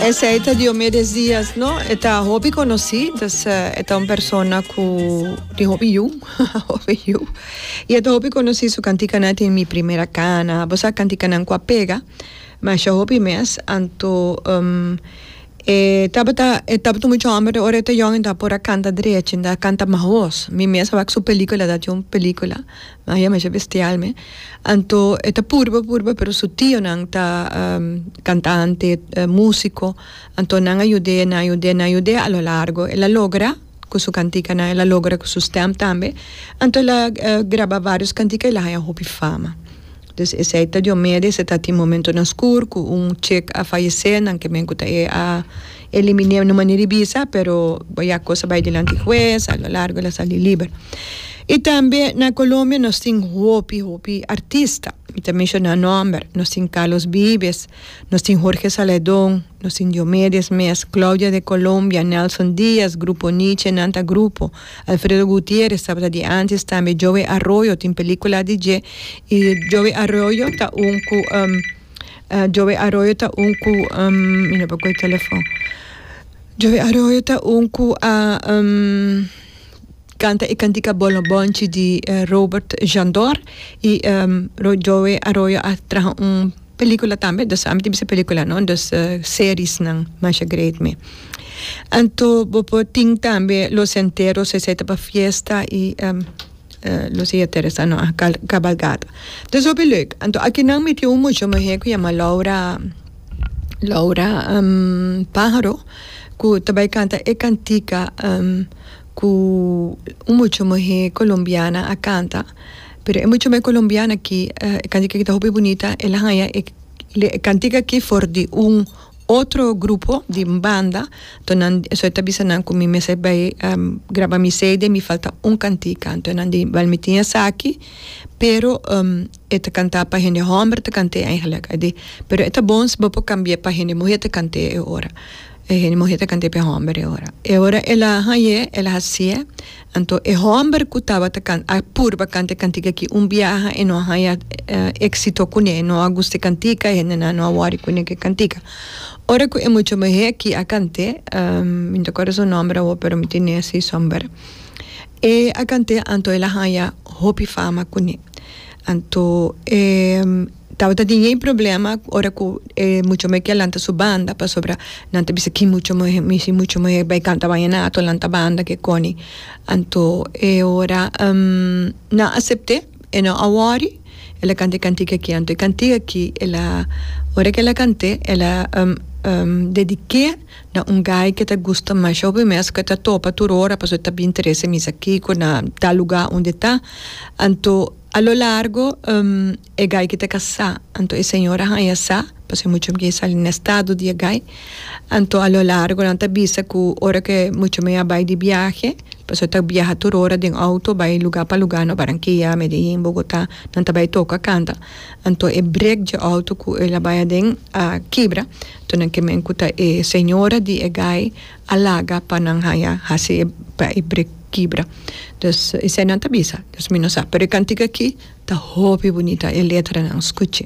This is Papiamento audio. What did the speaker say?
Esei ta Diomedes Diaz no e ta hopi konosí dus e ta un persona ku tin hopi yu hopi yu i e ta hopi konosí su kantikanan tin mi primera kana bo sa kantikanan ku a pega masha hopi mes anto e tabata e tabata muchu hòmber de ora e ta yòn e ta por a kanta drechi e ta kanta mahos mi mes a wak su pelíkula ta tin un pelíkula Nan yama esha bestial me. Anto e ta purba purba pero su tionan ta cantante, musico, anto nan a yud'e, nan a yud'e, nan a yud'e a lo largo el a logra cu su canticanan, el a logra cu su stem tambe, anto el a graba varios cantica y el a haya hopi fama. Dus esey ta diomede, esey ta tin momentonan scur cu un chek a fayece, nan ke men cu ta e a. Eliminé no manera di bisa pero bo ya cos a bay dilanti huez a lo largo el a sali liber. Y tambe na Colombia nos tin hopi hopi artista mi ta menciona nomber nos tin Carlos Vives, nos tin Jorge Saledon, nos tin Diomedes mes, Claudia de Colombia, Nelson Diaz, Grupo Niche nan ta grupo, Alfredo Gutierrez tabata di antes tambe Joey Arroyo tin pelicula di dje y Joey Arroyo ta un cu. Joe Arroyo ta un cu mi no por coge telefoon. Joe Arroyo ta un cu a canta e cantica Bolo Bonchi di Robert Jandor y Joe Arroyo a traha un pelicula tambe dus a mi tin bisa pelicula no dus seriesnan masha great mi. Anto bo por tin tambe Los Enteros esey ta pa fiesta y Lucia Teresa no a cabalgado. Ta super leuk. Anto aki nan mi tin un mucho muhe ku yama Laura Laura um, Pajaro ku ta bai kanta e kantika um, ku un mucho muhe colombiana a kanta. Pero e mucho muhe colombiana aki e kantika aki ta hopi bunita. El a haña e kantika aki for di un Otro grupo di banda to nan so ta bisa nan ku mi mester a bai graba mi cd mi falta un kantika anto nan di bal mi tin esaki pero e ta kanta pa hende homber ta kant'e eigenlik a di pero e ta bon si bo por kambie pa hende muhe ta kant'e e ora hende muhe ta kant'e pa e homber e ora e ora el a hañ'e el a hasi'e Anto e hòmber ku tabata kanta a purba kanta e kantika aki un biaha e no a haña éksito kuné, e no a gusta e kantika, e hendenan no a wòri ku neke kantika. Ora ku e mucha muhé aki a kant'é, mi no ta akorda su nòmber awor pero mi tin nesi sòmber, e a kant'é anto el a haña hopi fama kuné. Anto e tabata tin yey problema ora cu e mucha muhé kia lanta su banda pasobra nan ta bisa ki mucha muhé mi si mucha muhé bay canta bayenato lanta banda ke coni anto e ora nan a acepte e no a wori ela canta e cantica aki anto e cantica aki ela ora ke ela cant'e ela dedic'e Na un guy ke ta gusta mas show mi mes ke ta topa tur ora paso ta bin trese misa kiko na tal luga und'e ta anto a lo largo e guy ke ta kasá anto e señor a haña sa paso e mucha mei a sali na estado di e guy anto a lo largo nan ta bisa ku ora ke mucha mei a bai di biahe paso ta biaha tur ora den outo bai luga pa luga no Barankia Medellín Bogotá nan ta bai toka kanta anto e break dje outo ku el a bai aden a kibra. Tonan ke men ku ta e señora di e gai a laga pa nan haña hasi e pa e brek kibra. Dus esei nan ta bisa. Dus mi no sa. Pero e kantik aki ta hopi bunita e letranan. Skuchi.